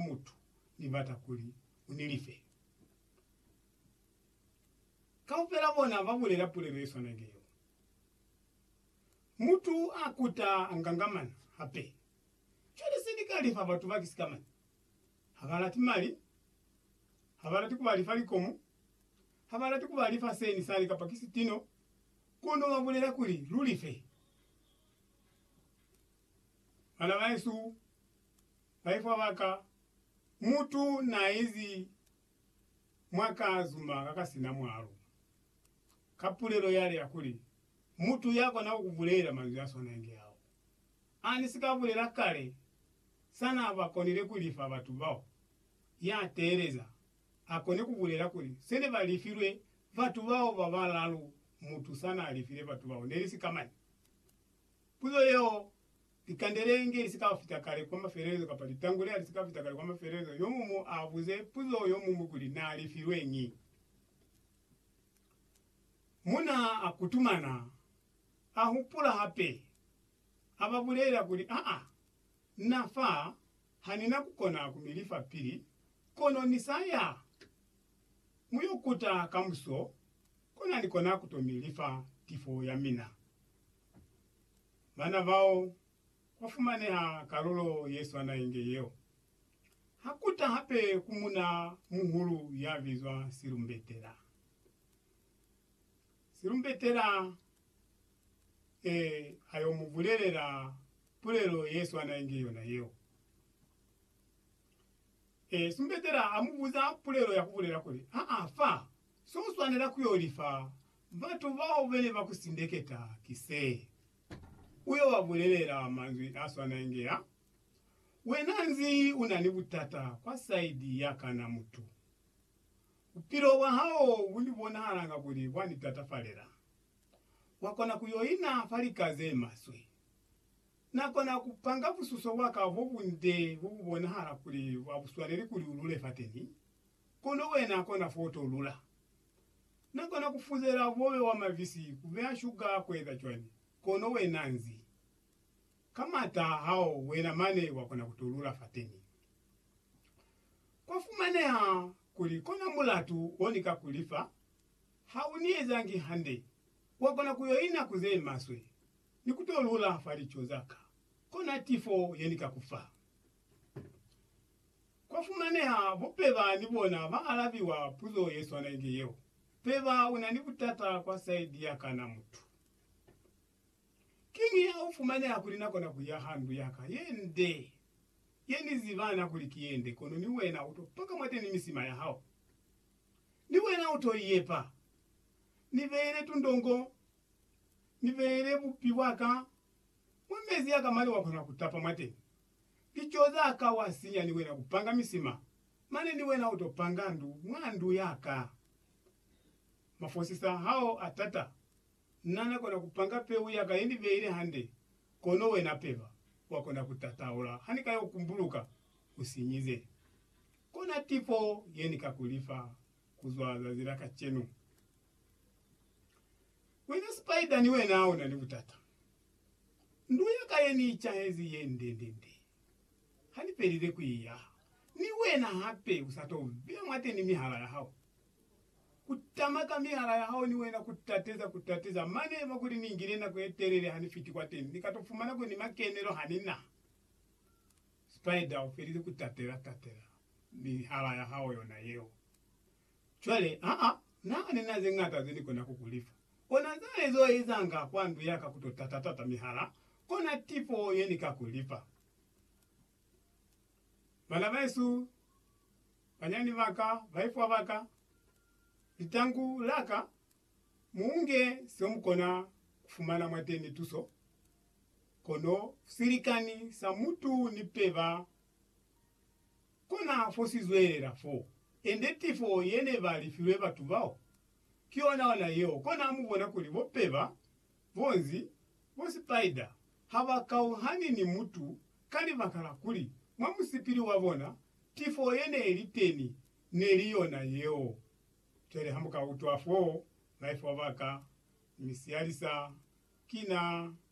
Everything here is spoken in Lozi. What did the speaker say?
mutu ni bata kuli u ni lifele. Kaufela bona ba bulela pulelo ye swana ni yeo. Mutu a kuta a ngangamana hape. Cwale se ni ka lifa batu ba ki sikamañi? Ha ba lati mali, ha ba lati ku ba lifa likomu, ha ba lati ku ba lifa se ni sani kapa ki sitino, kono ba bulela kuli lu life. Bana ba hesu, Baifwa ba ka, mutu n'a izi mwa ka zuma ka ka si na mwalo, ka pulelo yale ya kuli, Mutu ya kona ku bulela manzwi a swana inge ao a ni si ka bulela kale, sa n'a ba konile ku lifa batu bao, ya teeleza a kone ku bulela kuli, se ne ba lifilwe batu bao ba balalu mutu sa n'a lifile batu bao ne li si ka mane. Puzo yeo Likandelenge lisikafita kale kwa mafelelezo kapa litangule halisikafita kale kwa mafelelezo, yomumu abuze puzo yomuñwi kuli naalifilweñi. Muna akutumana ahupula hape, ababulelela kuli, Aa, na fa hanina kukona kumilifa pili, kono nisaya muyokuta kamuso kona nikona kutomilifa tifo yamina. Bana bao ba fumaneha kalulo ye swana inge yeo. Ha ku ta hape ku muna muhulu ya bizwa Silumbetela. Silumbetela e a yo mu bulelela pulelo ye swana inge yona yeo. E, Silumbetela a mu buza pulelo ya ku bulela kuli, Aa, fa, so u swanela ku yo lifa Batu bao bene ba ku sindeketa ki se, U yo ba bulelela manzwi a swana inge a, Wena nzi u na ni butata kwa saidi ya ka na mutu? Bupilo bwa hao bu ni bonahalanga kuli bwa ni tatafalela. Wa kona ku yo ina fa lika ze maswe. Na kona ku panga bususo bwa ka bo bunde bo bu bonahala kuli a bu swaneli kuli u lule fateni, kono wena kona fo u to lula. Na kona ku fuzela bobe wa mavisi ku beha shuga ku eza cwani, kono wena nzi. Ka mata a hao wena mane wa kona ku to lula fateni. Kwa fumaneha kuli kona mulatu wo ni ka ku li fa, ha u ni ezangi hande, wa kona ku yo ina ku ze maswe, ni ku to lula fa lico za ka, kona tifo ye ni ka ku fa. Kwafumaneha bo Peba ni bona ba alabiwa puzo ye swana inge yeo. Peba una ni butata kwa saidi ya kana mutu. Kiñi ha u fumaneha kuli na kona kuya ha ndu yaka ye nde, ye ni ziba na kuli ki ye nde, kono ni wena u to paka mwateni misima ya hao? Ni wena u to i yepa? Ni beele tundongo, ni beele bupi bwa ka mwa mezi a ka mali wa kona ku tapa mwateni. Lico za ka wa sinya ni wena ku panga misima, mane ni wena u to panga ndu mwa ndu ya ka. Mafosisa hao a tata. Na na kona ku panga peu ya ka ye ni beile hande, kono wena peba, wa kona ku tataula ha ni ka yo kumbuluka u sinyize. Kona tipo ye ni ka ku lifa ku zwa zazi la kacenu. Wena spider ni wena una ni butata. Ndu ya ka ye ni icahezi ye nde-nde-nde. Ha ni pelile ku i yaha, ni wena hape u sa to beya mwateni mihala ya hao. Ku tama ka mihala ya hao ni wena ku tateza, ku tateza. Mane eba kuli ni ngile nako ye telele ha ni fiti kwateni, ni ka to fumana kuli ni makenelo ha ni na. Spider u felile ku tatela, tatela mihala ya hao yona yeo. Cwale, aa, Na nina ze ñata ze Ni kona ku ku lifa. Ona za Ni zo ezanga kwa ndu ya ka ku to tata-tata mihala, kona tifo ye Ni ka ku lifa. Bana bahesu, banyani ba ka, baifwa ba ka, litangu la ka, mu unge se mu kona ku fumana mwateni tuso, kono silikani sa mutu ni peba. Kona fo si zwelela fo, ende tifo ye ne ba lifilwe batu bao, ki yona ona yeo. Kona mu bona kuli bo peba, bo nzi, bo spider ha ba kauhani ni mutu ka libaka la kuli, mwa musipili wa bona, tifo ye ne li teni ne li yona yeo. Cwale ha mu ka utwa foo, maifo a ba ka mi siyalisa, ki na